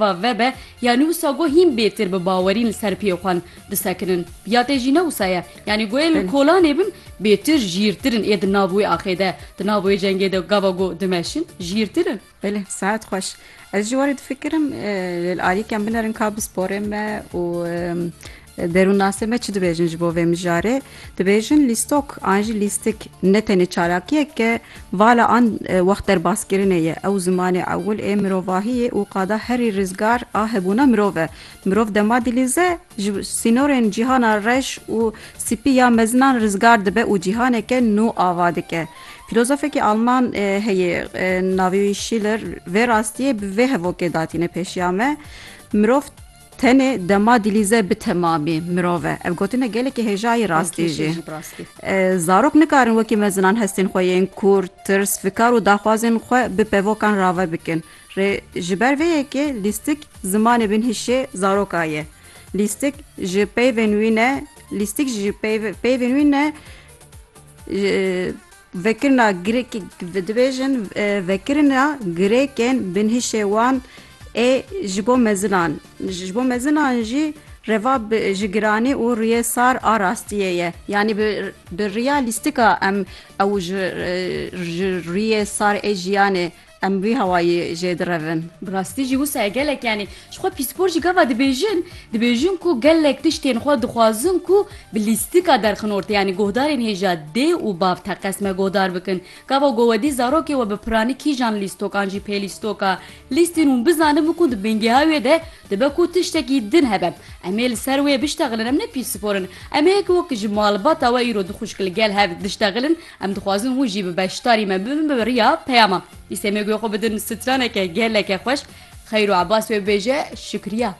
va vebe ya nî wisa go hîn bêtir bi bawerîn li ser piyê xwe disekinin ya tê jî ne wisa ye yanî goyê li kolanê bin bêtir jîrtir in ê di nav wê axê de di nav wê cengê de gava go dimeşin jîrtir in. Belê sehet xweş. Ez jî warê difikirim lê li alîkên bin erin ka bi sporê me û Derûnnasên me çi dibêjin ji bo vê mijarê? Dibêjin lîstok an jî lîstik ne tenê çalakiyek e, vala an wext derbaskirinê ye. Ew zimanê ewil ê mirovahiyê û qada herî rizgar a hebûna mirov e. Mirov dema dilîze, ji sînorên cîhana reş û sipî ya mezinan rizgar dibe û cîhaneke nû ava dike. Fîlozofekî alman heye navê wî Şîler vê rastiyê bi vê hevokê datîne pêşiya me, Mirov, Tenê dema dilîze bi temamî mirov e. Ev gotin e gelekî hêja yê rastî jî. Zarok nikarin wekî me zinan hestên xwe yên kûr, tirs, fikar û daxwazên xwe bi pevokan rave bikin. Rê ji ber vê yekê lîstik zimanê binhişê zaroka ye. Lîstik ji peyvên wî ne lîstik ji peyvên wî ne Vekirina girêkê dibêjin vekirina girêkên binhişê wan ê ji bo mezinan. Ji bo mezinan jî reva bi ji giranî û rûyê sar a rastiyê ye. Yanî bi bi rîya lîstika em ew ji ji rûyê sar ê jiyanê Em vî hawayî jê direvin. Bi rastî jî wisa ye gelek yanî ji xwe pîspor jî gava dibêjin. Dibêjin ku gelek tiştên xwe dixwazin ku bi lîstika derxin ortê yanî guhdarên hêja dê û bav teqez me guhdar bikin. Gava ku wedî zarokê we bi piranî kîjan lîstokan jî pê lîstoka lîstîn hûn bizanin bikin di bingehê wê de dibe ku tiştekî din hebe. Em ê li ser wê biştexilin. Em ne pîspor in. Em ê wek ji malbata we îro dixuşk li gel hev diştexilin. Em dixwazin hûn jî bi beşdarî me bibin bi riya peyama. Îsemê guya xwe bidin straneke geleke xweş. Xeyr û ebas wê bibêje şikriya.